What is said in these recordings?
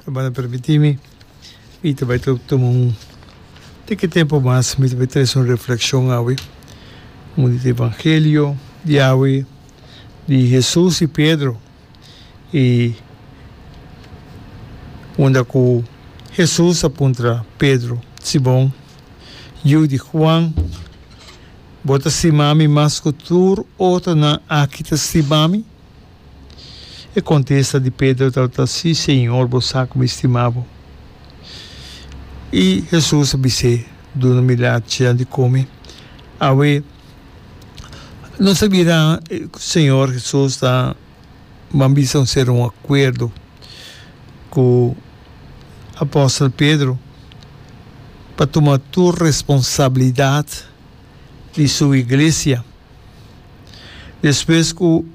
Ta banda permiti mi, mi ta bai ta tuma un tiki tempu mas, mi ta bai trese un reflekshon awe, un di e Evangelio di awe, di Hesus i Pedro, i unda ku Hesus a puntra Pedro, Simon, yu di Huan, bo ta stima mi mas ku tur otronan aki ta stima mi? E kontesta di Pedro tabata, Si, Señor, bo sa ku mi stima bo. I Hesus a bis'é, Duna milat cian di kome. Awe, nos a bira ku Señor Hesus ta ban bisa un ser un akuerdo ku apòstel Pedro pa tuma tur responsabilidat di su iglesia. Despues ku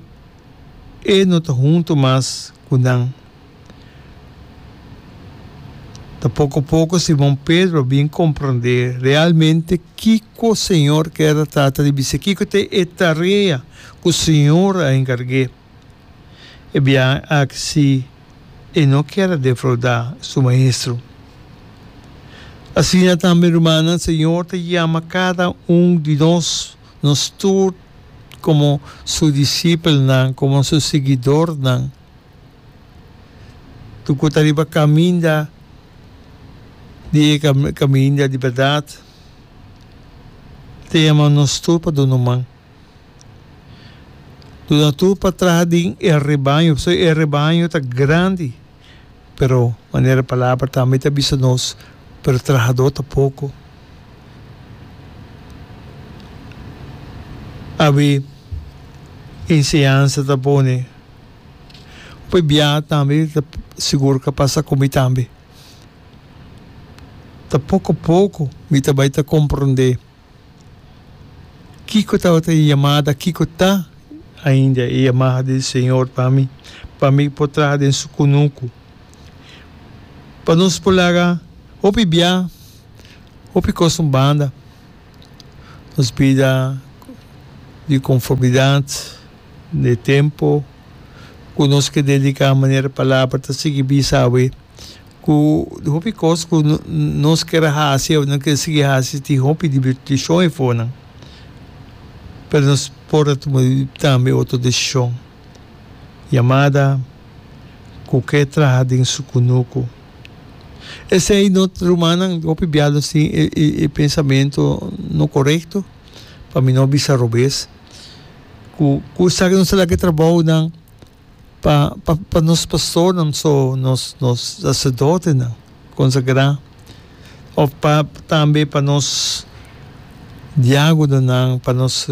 e no ta huntu mas ku nan, ta poko poko Simon Pedro bin komprondé realmente kiko Señor ker a trata di bis'é, kiko ta e tarea ku Señor a enkarg'é. E biaha ak si e no kier a defrauda su maestro. Asina tambe, rumannan, Señor ta yama kada un di nos, nos tur komo Su disipelnan, komo Su siguidornan. Tur ku ta riba kaminda di e kaminda di bèrdat, e ta yama nos tur pa duna man. Duna tur pa traha den e rebaño, pasobra e rebaño ta grandi, pero manera Palabra tambe ta bisa nos, pero trahadó ta poko. Abi enseñansa ta pone, p'e bia tambe ta sigur ka pasa ku mi tambe. Ta poko poko mi ta bai ta komprondé. Kiko tabata e yamada? Kiko ta ainda e yamada di Señor pa mi, pa mi por traha den su kunuku? Pa nos por laga hopi biaha, hopi kos un banda, nos bida di konformidat den e tempu ku nos ke dediká manera e Palabra ta sigui bisa awe. Ku hopi kos ku nos ker a hasi o nos ker sigui hasi tin hopi divirtishon e for nan. Pero nos por a tuma tambe otro desishon. Yamada ku ke traha den su kunuku. Esei no rumannan hopi bia nos tin e pensamentu no korekto. Pa mi no bisa robes ku esaki nos a laga e trabou nan Pa pa pa nos pastornan so nos nos sacerdotenan consagrá of pa tambe pa nos diagononan pa nos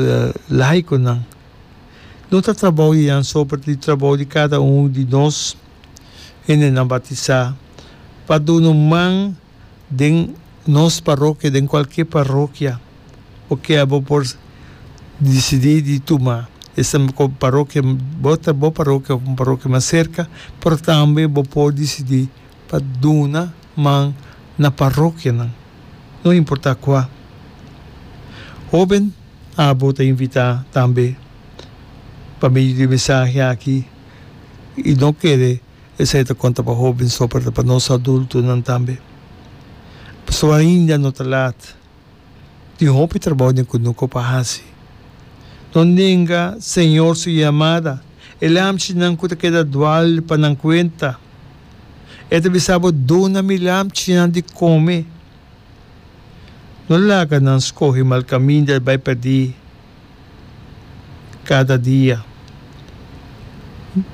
laiconan no ta trabou di nan so pero di trabou di cada un di nos hendenan batizá pa dun'e man. den nos parokia, den cualkier parokia, oke abo por dicidi di tuma esnan cu parokia bo ta bo parokia of un parokia mas cerca, pero tambe bo por dicidi pa duna man na parokianan, no importa cua. Hoben abo ta invita tambe pa medio di e mensahe aki y no kere. Esei ta konta pa hóbennan so, pero ta pa nos adultonan tambe. Pasobra ainda no ta lat. Tin hopi trabou den kunuko pa hasi. No nenga Señor su yamada. E lamchinan ku ta keda dual pa nan kuenta. E ta bisa bo, Duna mi lamchinan di kome. No laga nan skohe malkaminda bai pèrdí. Kada dia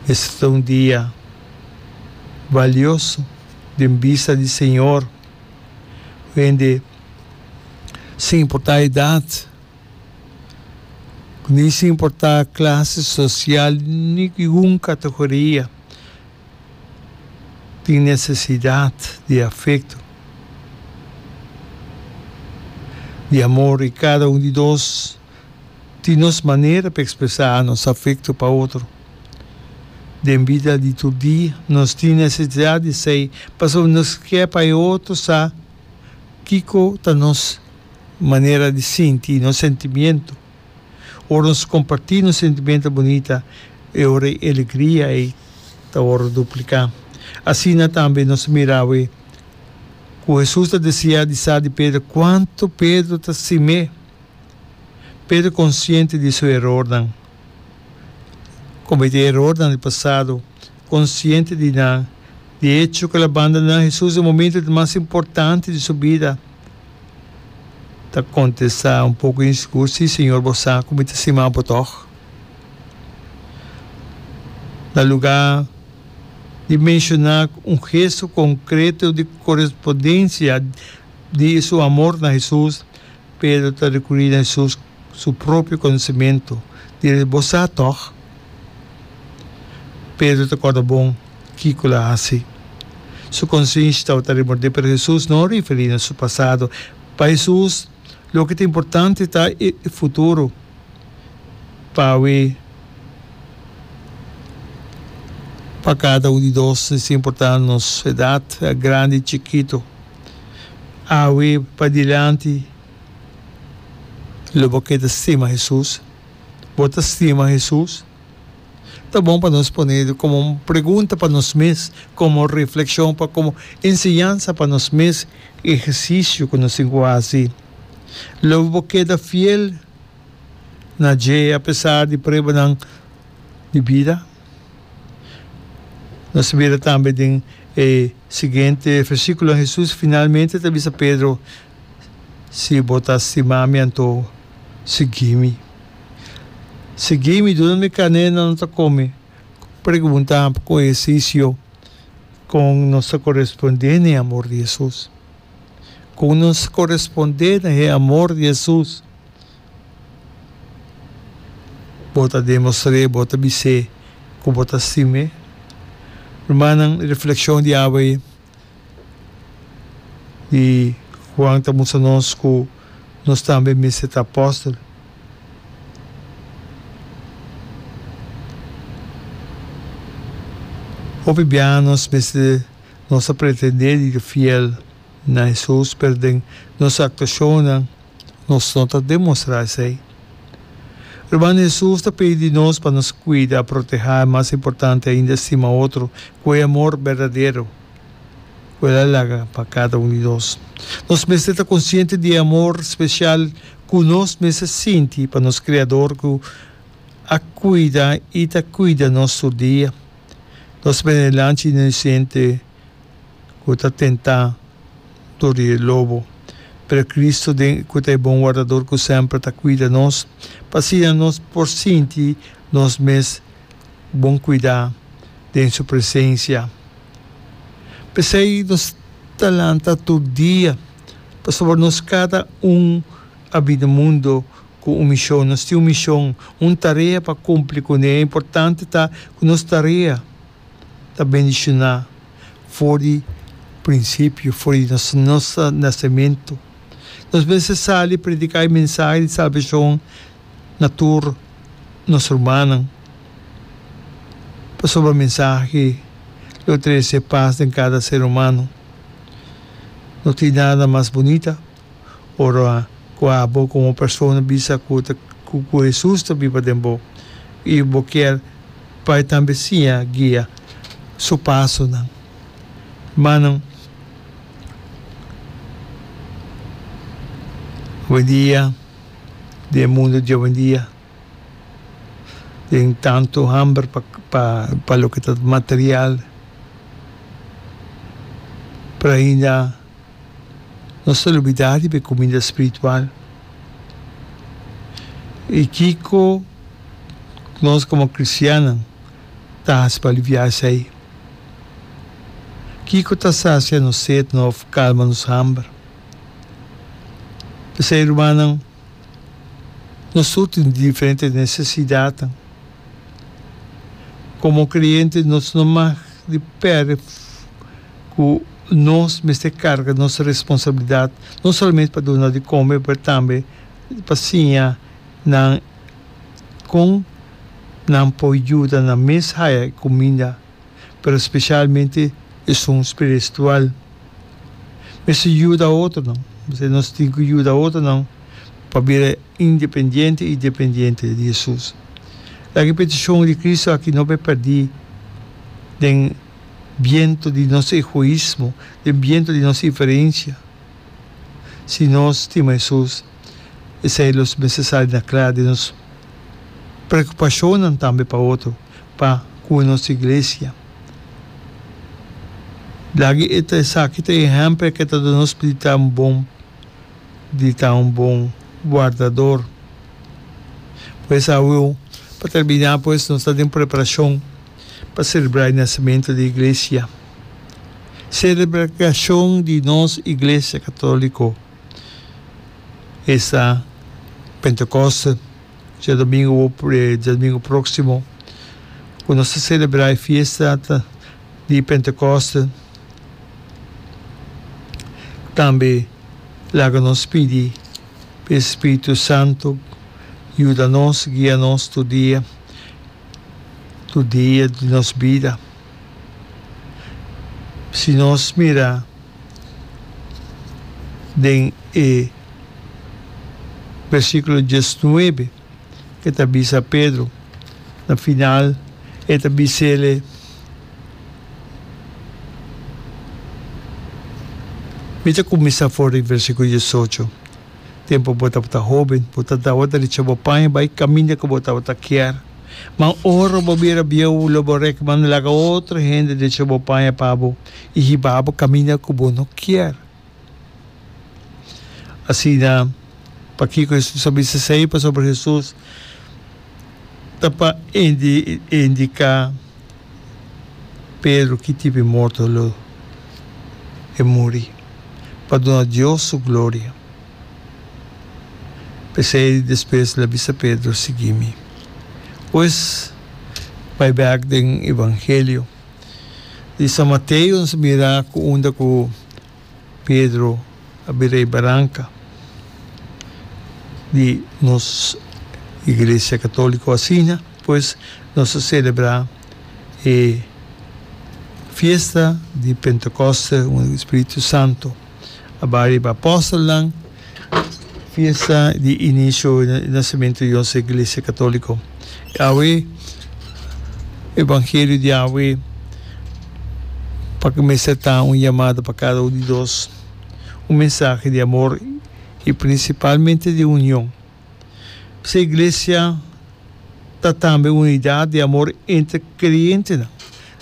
mester ta un dia balioso den bista di Señor. Hende, sin importa edad, ni sin importa clase social ni gun categoria, tin nesesidat di afekto, di amor i kada un di nos tin nos manera pa ekspresá nos afekto pa otro. Den bida di tur dia nos tin nesesidat di esei pasobra nos ke pa e otro sa kiko ta nos manera di sinti, nos sentimiento. Ora nos kompartí nos sentimentu bunita, e ora e alegria ei ta wòrdu dupliká. Asina tambe nos a mira awe ku Hesus ta deseá di sa di Pedro kuantu Pedro ta sim'é. Pedro konsiente di su erornan, komet'é erornan di pasado. Konsiente di nan. Di hecho ku el a bandoná Hesus den momentu di mas importante di su bida, ta kontestá un poko insigur, Sí, Señor, bo sa ku mi ta stima bo tòg. Na lugá di menshoná un gesto konkreto di korespondensia di su amor na Hesus, Pedro ta rekurí na Hesus su propio konosementu. Di res bo sa tòg? Pedro ta kòrda bon kiko lo a hasi. Su konsinsha tabata remordé, pero Hesus no a referí na su pasado. Pa Hesus, loke ta importante ta e futuro, pawe pa kada un di nos es importante nos edat, grandi i chikito. Awe padilanti lo bo keda stima Hesus? Bo ta stima Hesus? Ta bon pa nos pone e komo un pregunta pa nos mes, komo reflekshon, pa komo enseñansa pa nos mes, ehersisio ku nos tin ku hasi. Lo bo keda fiel na dje apesar di pruebanan di bida? Nos ta bira tambe den e siguiente versíkulonan. Hesus finalmente ta bisa Pedro, Si bo ta stima mi, anto sigui mi. Sigui mi, duna mi kané, nan lo ta kome. Pregunta ku ehersisio, Kon nos ta korespondé na e amor di Hesus? Kon nos korespondé na e amor di Hesus? Bo ta demostr'é, bo ta bis'é ku bo ta stim'é. Rumannan, e reflekshon di awè'é di Juan ta mustra nos ku nos tambe mester ta apòstel. Hopi biaha nos mester nos ta pretendé di ta fiel na e sus, pero den nos actuacionnan nos no ta demostra esey. Hermano Jesus ta pidi di nos pa nos cuida, proteha y mas importante ainda stima otro cu e amor berdadero cu el a laga pa cada un di nos. Nos mester ta consciente di e amor special cu nos mester sinti pa nos Creador cu a cuida y ta cuida nos tur dia. Nos ben'e lanchi inocente. ku ta tentá dor di e lobo, pero Cristo den ku ta e bon wardador ku semper ta kuida nos, pa asina nos por sinti nos mes bon kuidá den su presensia. P'esei nos ta lanta tur dia, pasobra nos kada un a bini na mundu ku un mishon, nos tin un mishon, un tarea pa kumpli kuné. Importante ta ku nos tarea. ta bendishoná for di prinsipio, for di nos nasementu. Nos mester sali prediká e mensahe di salbashon na tur nos rumannan, pasobra e mensahe lo trese pas den kada ser humano. No tin nada mas bunita ora ku abo komo persona bisa ku ta ku ku Hesus ta biba den bo i bo kier pa e tambe siña guia su pasonan. Manan, hoedia den e mundu di owendia den tantu hamber pa pa pa loke ta material, por ainda. Nos ta lubidá riba e kumida spiritual. I kiko ku nos komo kristiannan ta hasi pa aliviá esei? Kiko ta sasia nos set nof, kalma nos hamber? P'esei, rumannan, Nos tur tin diferente necesidadnan. Como creyente nos no mag di perde cu nos mester carga nos responsabilidad no solamente pa duna di come pero tambe pa siña nan con nan por yuda nan mes haya e cuminda. pero specialmente esun spiristual. Mester yuda otronan. Mester nos tin cu yuda otronan pa bira independiente y dependiente di Jesus. Laga e peticion di Cristo aki no be perdi den biento di nos egoismo, den biento di nos inferencia. Si nos stima Jesus, esai lo mester sali na cla den nos preocupacionnan tambe pa otro. Pa cu nos iglesia. Lagi e ta esaki ta ehempel ke ta duna nos pita un bon di ta un bon guardador. Pues awe pa terbina pues nos ta den preparacion pa celebra e nacimento di iglesia. Celebracion di nos iglesia catolico esta Pentecoste. Dje domingo dje domingo próksimo ku nos ta selebrá e fiesta di Pentekòste, tambe laga nos pidi pa e spiritu santu yuda nos, guia nos tur dia, tur dia di nos bida. Si nos mira den e versiculo diesnuebe, e ta bisa Pedro, na final e ta bisele, Mi ta cuminsa for di versiculo diesocho. Tempu bo tabata hoben, bo ta tabata di cho bo paña bai kaminda ku bo tabata kier. Ma ora bo bira bieu, lo bo rekmanda laga otro hende di cho bo paña pa bo i hiba bo kaminda ku bo no kier. Asina, pakiko Hesus a bisa esei? Pasobra Hesus ta pa indiká. Pedro ki tipi morto lo e muri pa duna Dios su gloria. P'esei di despues el a bisa Pedro, Sigui mi. Pues, bai bek den Evangelio di San Mateo nos a mira ku unda ku Pedro a bira e baranca di nos Iglesia Catolico asina pues nos a celebra e fiesta di Pentecoste, un Spiritu Santo a bari e Apostelnan. Fiesta di inicio di nacimento di nos iglesia catolico. Awe evangelio di awe p'aki mester ta un yamada pa cada un di nos, un mensahe di amor y principalmente di union. P'esei iglesia ta tambe un unidad di amor entre creyentenan,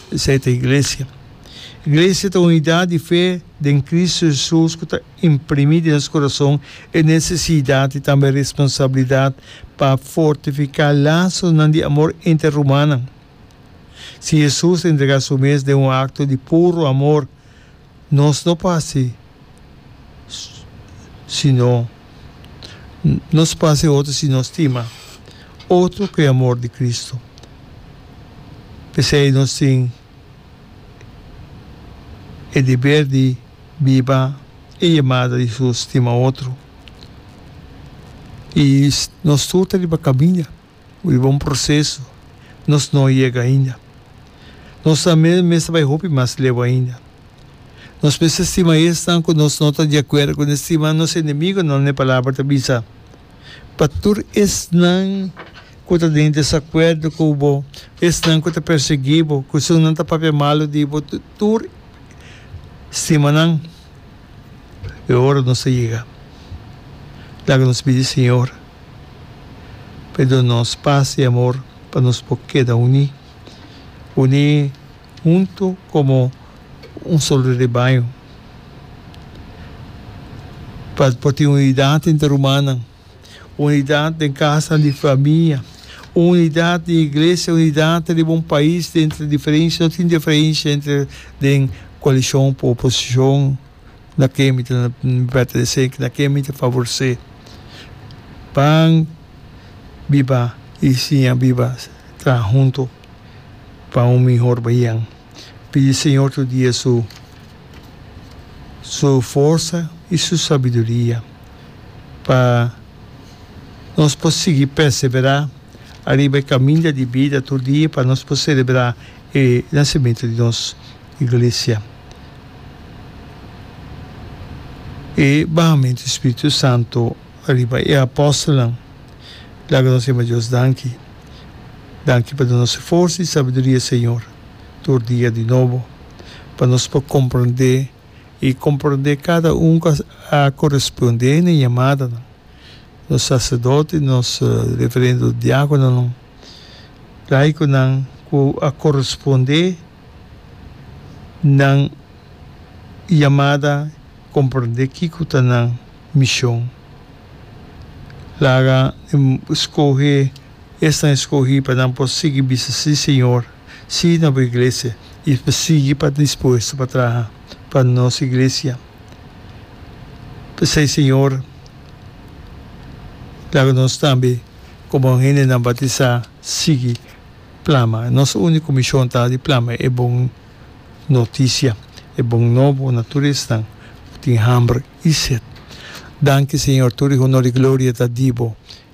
p'esei ta iglesia. Iglesia ta unidad di fe den Cristo Jesus cu ta Imprimí den nos kurason e nesesidat i tambe e responsabilidat pa fortifiká lasosnan di amor entre rumannan. Si Hesus a entregá su mes den un akto di puru amor, nos no por hasi sino nos por hasi otro si nos stima otro ku e amor di Kristu. P'esei nos tin e deber di. Biba e yamada di su stima otro. I nos tur ta riba kaminda, riba un proseso. Nos no a yega ainda. Nos nan mes mester bai hopi mas leu ainda. Nos mester stima esnan ku nos no ta di akuerdo ku nan, stima nos enemigunan, e Palabra ta bisa. Pa tur esnan ku ta den desakuerdo ku bo, esnan ku ta persiguí bo, ku esunnan ta papia malu di bo, tur. stimanan, e ora nos a yega. Laga nos pidi Señor pa e duna nos pas i amor pa nos por keda uní, uní huntu komo un solo rebaño, pa por tin unidat entre rumannan. Unidat den kasanan di famia, unidat den iglesia, unidat riba un pais den diferensha. No tin diferensha entre den koalishon ku oposishon na ke mi ta pertenesé, na ke mi ta favorsé. Ban biba i siña biba traha huntu pa un mihor bahian. Pidi Señor tur dia su forsa i su sabiduria. pa nos por sigui perseverá ariba e kaminda di bida tur dia pa nos por selebrá e nasimentu di nos Iglesia. E bahamentu di spiritu santu riba e apòstelnan laga nos yama Dios danki. Danki pa dunase forsa i sabiduria, Señor, tur dia di nobo, pa nos por komprendé i komprondé kada un ku a korespondé na e yamadanan, nos saserdote, nos referendo diákononan, laikonan ku a korespondé nan yamada, komprondé kiko ta nan mishon. Laga skohe esnan e skohí pa nan por sigui bisa si Señor. sí na bo iglesia i pa sigui pa ta dispuesto pa traha pa nos iglesia. P'esei, Señor, laga nos tambe komo hendenan bautisá sigui plama. Nos úniko mishon ta di plama e bon notisia, e bon nobo na tur esnan ku tin hamber i set. Danki, Señor, tur di honor i gloria ta di bo